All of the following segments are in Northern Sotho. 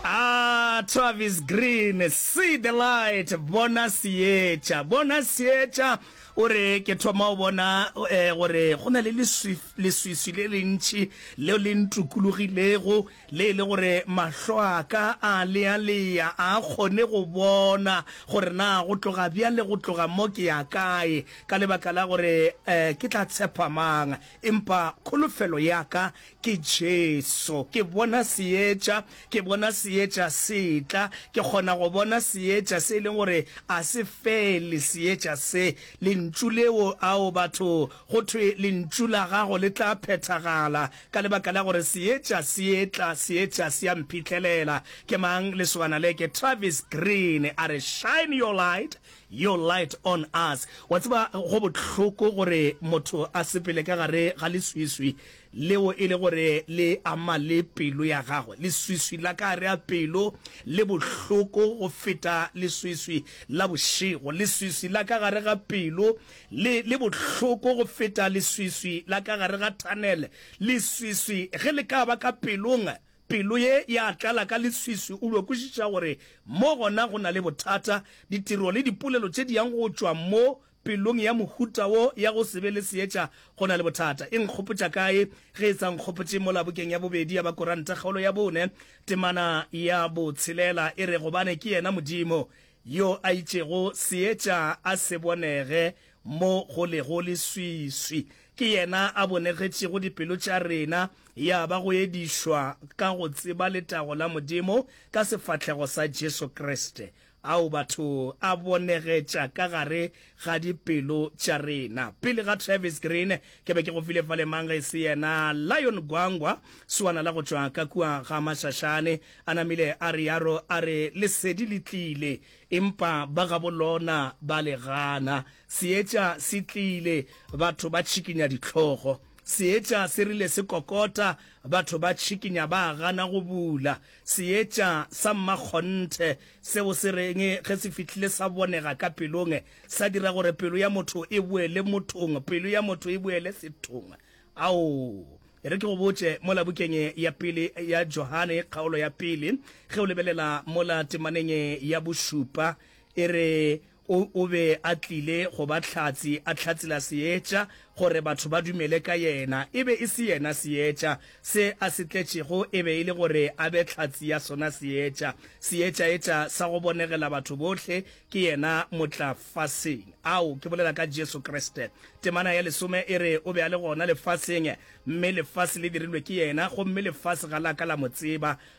Aah Travis Green, See the light, Bona Seetša, Bona Seetša, o re, Ke thoma go bona eh, gore go na le leswi, leswiswi le lentši leo le ntukulogilego, le e le gore mahlo a ka a lealea, a a kgone go bona gore na go tloga bjale go tloga mo ke ya kae, ka lebaka la gore eh, ke tla tshepa mang, empa kholofelo ya ka Ke Jesu. Ke bona Seetša. Ke bona Seetša se tla. Ke kgona go bona Seetša se e leng gore a se fele, Seetša se, Lentšu leo. Ao, batho, go thwe Lentšu la Gago le tla phethagala, ka lebaka la gore Seetša se etla, Seetša se a mphitlhelela. Ke mang lesogana le? Ke Travis Green. A re, Shine Your Light, Your Light on Us. Wa tseba, go bohloko gore motho a sepele ka gare ga leswiswi, leo e le gore le ama le pelo ya gagwe, leswiswi la ka gare ga pelo le bohloko go feta leswiswi la bošego, leswiswi la ka gare ga pelo le, le bohloko go feta leswiswi la ka gare ga thanele. Leswiswi ge le ka ba ka pelong, pelo ye ya tlala ka leswiswi, o dio kwešiša gore mo gona go na le bothata, ditiro le dipolelo tše di yang go tšwa mo Pelong ya mohuta wo ya go se be le seetša go na le bothata. E nkgopotša kae ge e sa nkgopotše mola bukeng ya bobedi ya ba Koranta kgaolo ya bone, temana ya botshelela e re, Gobane ke yena Modimo yo a itšego seetša a se bonege mo go lego leswiswi, ke yena a bonegetšego dipelo tša rena, ya ba go edišwa ka go tseba letago la Modimo ka sefahlego sa Jesu Kriste. Ao batho a bonegetša ka gare ga dipelo tša rena. Pele ga Travis Green, ke be ke go file fale mang ge e se yena Lion Gwangwa, swana la go tšwa ka kua ga Mashashane. A namile a re yaro, a re, Lesedi le tlile, empa ba gabo lona ba le gana. Seetša se tlile, batho ba tšhikinya dihlogo. Seetša se rile se kokota, batho ba tšhikinya, ba gana go bula. Seetša sa mmakgonthe seo se reng ge se fihlile sa bonega ka pelong, sa dira gore pelo ya motho e boele mothong, pelo ya motho e boele sethong. Ao, e re ke go botše, mola bukeng ya pele ya Johane, kgaolo ya pele, ge o lebelela mola temaneng ya bošupa, e re, O, o be a tlile go ba Hlatse, a hlatsela Seetša, gore batho ba dumele ka Yena. E be e se Yena Seetša. Se A se tletšego e be e le gore A be Hlatse ya sona Seetša. Seetša etša sa go bonegela batho bohle, ke Yena motla faseng. Ao, ke bolela ka Jesu Kriste. Temana ya lesome e re, O be a le gona lefaseng, mme lefase le dirilwe ke Yena, gomme lefase ga la ka la Mo tseba.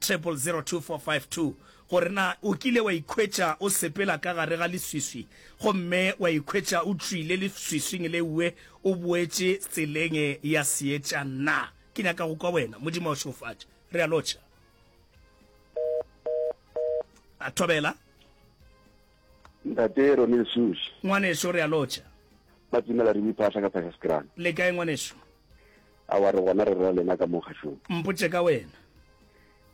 000245 gore na o kile wa ikhwetša o sepela ka gare ga leswiswi gomme wa ikhwetša o tšwile leswiswing leue o boetše tseleng ya seetša na? Ke nyaka go kwa wena. Modimo a o šegofatše. Re a lotšha. A thobela. Ntate Ronel Sush. Ngwaneso re a lotšha. Ba tsimela re biphaahla ka Pakistan. Le kae ngwaneso? Aowa, re gona re re wa lena ka mo kgašong. Mpotše ka wena.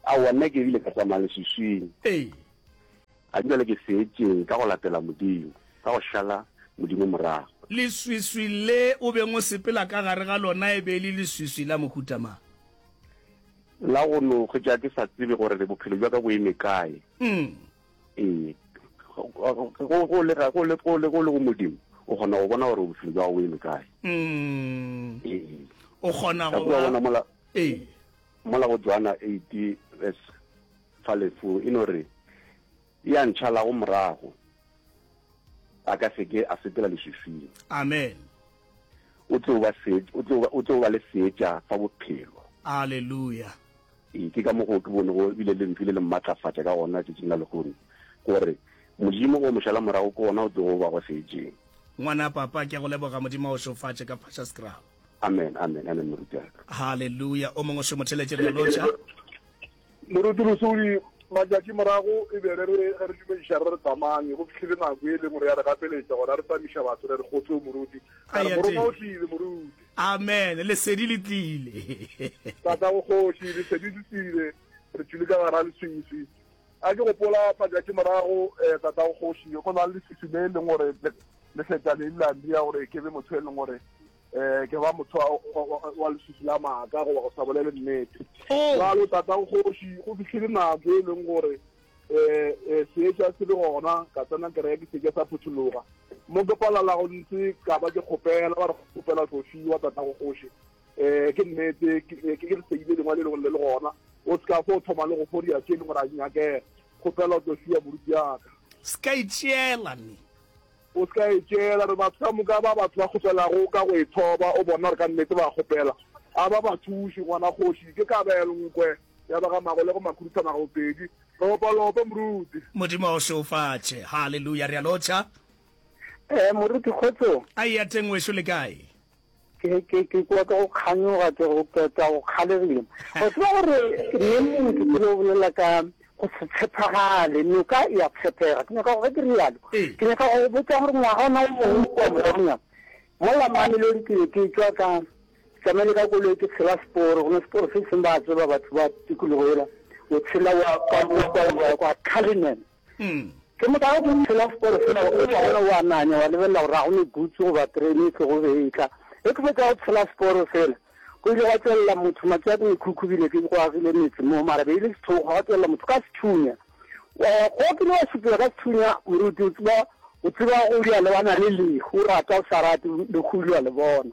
Aowa, nna ke bile ka tsamaya leswiswing. Ee. Ga ke bjale ke seetšeng ka go latela Modimo, ka go šala Modimo morago. Leswiswi le o beng o sepela ka gare ga lona e be e le leswiswi la mohuta mang? La go no hwetša ke sa tsebe gore bophelo bja ka bo eme kae. Umm. ee go le go modimo o kgona go bona gore bophelo jwa gago eme kae mm. ee o kgona go bona mola ee mola go joana 8 verse fa lefu e no re ya ntšhala go morago a ka seke a sepela leswiswing amen O tlo ba seet, o tlo, o tlo ba le seetša sa bophelo. Aleluya! Ee, ke ka mokgo ke bonego e bile Lentšu le le mmatlafatša ka gona tšatšing la lehono, gore Modimo o mošalamorago ke wona o tlogo ba go seetšeng. Ngwana, Papa, ke a go leboga. Modimo a go šofatše ka phatša sekrabo. Amen, amen, amen, moruti wa ka. Haleluya! O mongwe o šomotheletše bjalo, tša. Moruti Lesodi, Matšatši morago e be re re ge re dumediša re re tsamanye, go fihlile nako e lengwe re ya re gapeletša gona re tsamiša batho re re kgotseo moruti, ra re morongwa o tlile moruti. Amen, lesedi le tlile. Tatago kgoši, lesedi le tlile, re tšwile ka gare ga leswiswi. A ke gopola matšatši morago tatago kgoši go na le leswiswi le e leng gore le feta le ile la ndia gore ke be motho e leng gore um ke ba motho wa leswiswi la maaka goba go sa bolele nnete oh. jalo tatang kgoši go fitlhile nako e leng gore um seetša se le gona ka tsena kereke ke seke sa phuthologa mo ke palala go ntse ka ba ke kgopela ba re kgopela tlo fiwa tatago kgoši um ke nnete ke re seile lengwa le lengwe le le gona o se ka fo o thoma le go fodia tse e leng gore a nyakega kgopela tlo fiwa moruti yaka se ka itšeela ne O se ka e tšeela gore batho ka moka ba batho ba kgopelago ka go e thoba, o bona gore ka nnete ba kgopela. A ba ba thuši, gona kgoši, ke kabelo nkwe ya ba ga magolego makhuduthamaga bobedi. Lopa, lopa, moruti. Modimo a o šeofatše. Haleluya! Re a lotšha. Ee, moruti, kgotsong. A eya teng, ngweso. Le kae? Ke, ke, ke kwa ka go kganyoga, ke go keta, go kgalegile. Go tseba gore ne motho ke lo bolela ka go se tshepagale, noka e a tshepega. Ke nyaka gore ke re yalo. Ke nyaka go botsa gore ngwaga ona o mongwe kwa moragonyana, mola mamelodi ke be ke tswa ka tsamaile ka koloi ke tshela seporo gona seporo se seng ba tseba batho ba tikologo ela o tshela wa kwa kwa kwa kwa Cullinan Umm. Ke mokago ke ipshela seporo sela o tla bona o ananya wa lebelela gore ga go ne gutse goba terene e tlogo be e tla. Ge ke fetša go tshela seporo sela go ile gwa tšwelela motho matšo a ke mekhukhu bile ke go agile metse mo mara be e le sethogo gwa tšwelela motho ka sethunya. Go kile wa šupiwa ka sethunya moruti o tseba o tseba go lwa le ba na le lehu o rata o sa rate lehu o lwa le bona.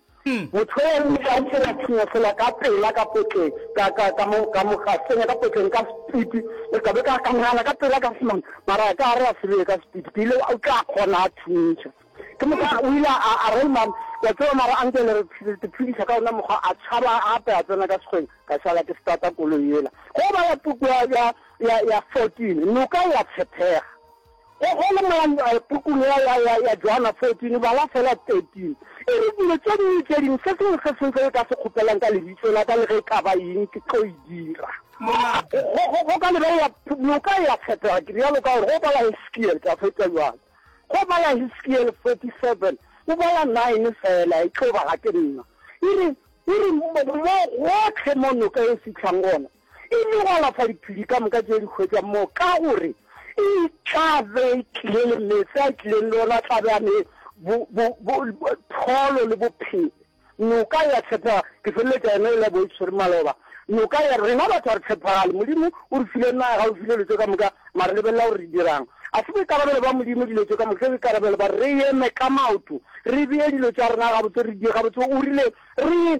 Motho yoo o ile a ntsenya tshenyefela ka pela ka potleng, ka, ka, ka mo, ka mo gasenya ka potleng ka sepiti, le ka be ka, ka nagana ka pela ka semang, mara a ka re a sebeye ka sepiti, ke ile, o tla kgona a thuntšha. Ke moka o ile a, a re, Mma, wa tseba, mara anke le re phediša ka wona mokgwa, a tšhaba gape a tsena ka sekgweng, ka šala ke starta koloi yela. Go ba ya, ya, ya, ya fourteen, noka e a tshephega. Go go le mola pukung ya, ya, ya, ya Joana 14, bala feela 13. E re, Dilo tše dingwe le tše dingwe, se sengwe le se sengwe se le ka se kgopelang ka Lebitso la Ka, le ge e ka ba eng, Ke tlo e dira. Molato. Go, go, go ka lebelela noka ya Tshepegago, ke realo ka gore go bala Hesekiele, ke a fetša bjale. Go bala Hesekiele 47, o bala 9 feela, e tlo ba ga ke nna. E re, e re, Mo gohle mo noka e fihlang gona, e nyogalafa diphedi ka moka tše di hwetšang moo, ka gore e tla be e tlile le meetse a e tlileng le ona, a tla be a ne pholo le bophelo. Noka ya tshepega, ke feleletša yona e le bo e tshwere maloba. Noka ya rena batho a re tshepagale, Modimo o re file naga, o file dilo tše ka moka, mare lebelela gore re dirang. A se boikarabelo ba Modimo dilo tše ka moka, ke boikarabelo ba re eme ka maoto, re bee dilo tša rena gabotse, re di gabotse. O rile re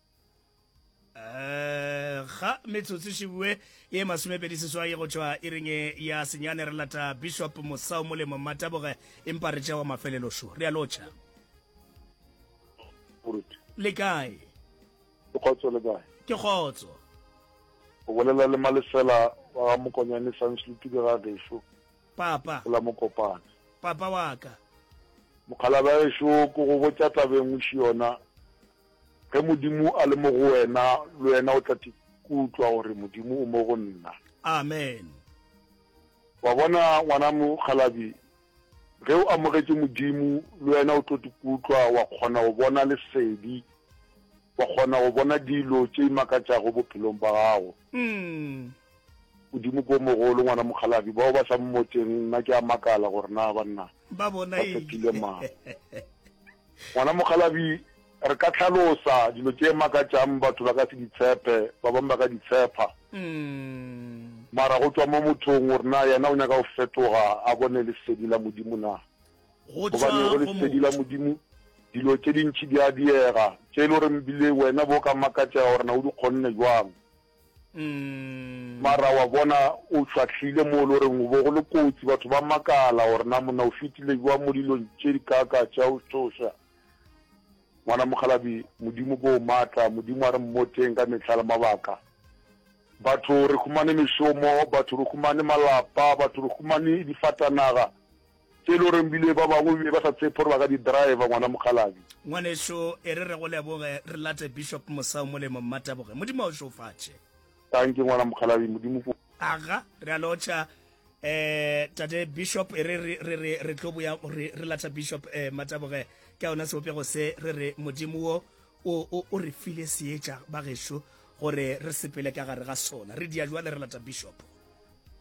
Eh, ga metsotso šibue ye masomepedi seswai go tšwa e reng e ya senyane re lata bishop mosao molemo mmataboge empa re tšewa mafelelošo re a lotšha le kae ke kgotso le kae ke kgotso o bolela le malefela wa ga mokonyane sanslutube ga gešo papa ola mokopane papa wa ka mokgalaba gešo ko go botša tabeng o ši yona Ge Modimo a le mo go wena, le wena o tla tikutlwa gore Modimo o mo go nna. Amen. Wa bona, ngwana mokgalabje, ge o amogetše Modimo, le wena o tlo tikutlwa wa kgona go bona lesedi, wa kgona go bona dilo tše di makatšago bophelong ba gago. Modimo ke o mogolo, ngwana mokgalabje. Bao ba sa mmotšeng, nna ke a makala gore na banna ba Ba bona eng? tshepile mang. Ngwana mokgalabje, re ka hlalosa dilo tše makatšang batho ba ka se di tshepe, ba bangwe ba ka di tshepa. Mara go tšwa mo mothong gore na yena o nyaka go fetoga a bone lesedi la Modimo na. Gobane go lesedi la Modimo dilo tše dintši di a diega, tše e le goreng bile wena bo o ka makatšega gore na o di kgonne bjang. Mara wa bona o fahlile mo lo reng bo go le kotsi batho ba makala gore na monna o fetile jwa mo dilong tše di kaka tša o tsoša ngwana mokgalabi modimo ko matla modimo a re mmoteng ka mehla le mabaka batho re khumane mešomo batho re khumane malapa batho re khumane difatanaga Tše e le gore bile ba bangwe be ba sa tshepe gore ba ka di driver, ngwana mokgalabje. Ngwanešu, e re re go leboge, re late Bishop Mosau molemo. Mmateboge. Modimo a o šofatše. Tanki, ngwana mokgalabje. Modimo ko. Aga, re a lotšha, eh, Tate Bishop. E re, re, re, re tlo boya, re, re lata Bishop, eh, Mmateboge. Ke a ona sebopego se, re re Modimo wo, o, o, o re file seetša, bagešo, gore re sepele ka gare ga sona. Re dia jwale, re lata Bishop.